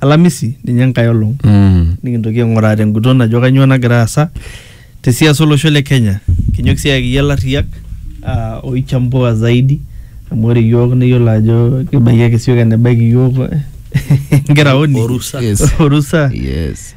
alamisi ninye enkae olong Mm. nikintoki aing'uraa tenguton ajo kanyoo nagira aasa te siasa olosho le Kenya. Kinyok sii ayaki iyie ilarriyak ah, oichambua zaidi amu ore iyiook neyiolo ajo kibaiki ake sioki enebaiki iyiook nkiraoni Orusa. Yes. orusa Yes.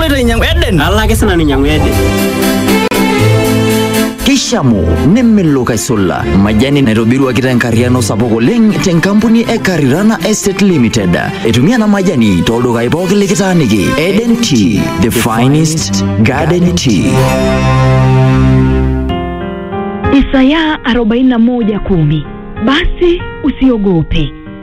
Aloito ainyang'u Eden. Alo ake sina ninyang'u Eden. Keishamu nemelok aisula majani naitobiruaki tenkarriano sapuk oleng tenkampuni e Karirana Estate Limited. Etumia ena majani tooldukai pooki likitaaniki. Eden Tea, the finest garden tea. Isaya 41:10 Basi usiogope,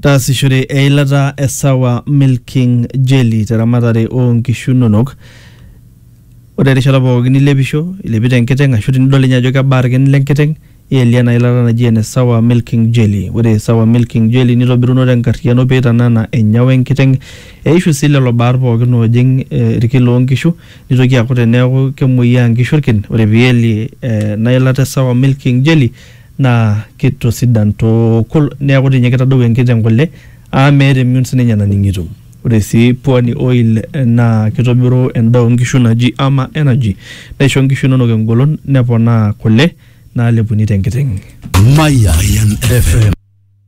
taasishore eilata e sawa milking jelly teramatare oo nkishu inonok ore erishata pookin nilepisho ilepito enkiteng ashu tinidol ninye ajo kebaa irkin lenkiteng ielie ena ilata naji ene sawa milking jelly ore sawa milking jelly nitobiruno tenkarriyiano peitanana enyawa enkiteng eishu sii lelo baat pookin oojing eh, irkin loonkishu nitoki aaku teneeku kemuoyiaa inkishu irkin ore pielie eh, ena ilata e sawa milking jelly naa keitosidan tukul neaku dii ninye keitadou enkiteng kule amu meeta emion sii ninye naning'ito. Ore sii pwani oil naa keitobiru endaa oo nkishu naji ama energy neisho nkishu inonok engolon neponaa kule naalepuni te nkiteng. Mayian FM.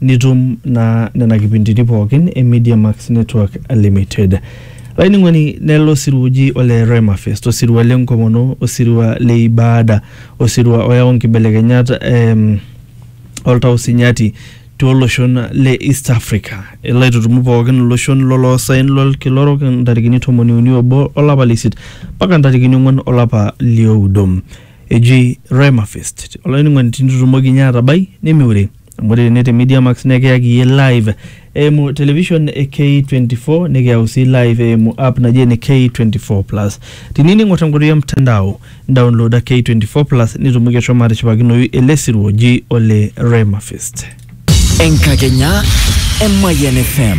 nitum naa nena kipindini pookin e Media Max Network Limited. Laining'oni nelo osirua oji ole Rema Fest, osirua le nkomono, osirua le ibaada, osirua oyau nkibelekenyat em, oltau sinyati tooloshon le East Africa. Elo aitutumu pookin iloshon loloosaen lolkila orok ntarikini tomoni uni obo olapa le isiet mpaka ntarikini ong'wan olapa lioudo. Eji Rema Fest. Olainining'oni tinitutumoki ninye atabai nimiure. amu ore tene te Media Max naa kiyaki iyie live eimu television e K24 nikiyau sii live eimu app naji ene K24 plus. Tiniyieu ning'or tenkoitoi e mtandao downloada K24 plus nitumoki ashomo atishipakinoyu ele sirua oji ole Rema Fest. Enkakenya e Mayian FM.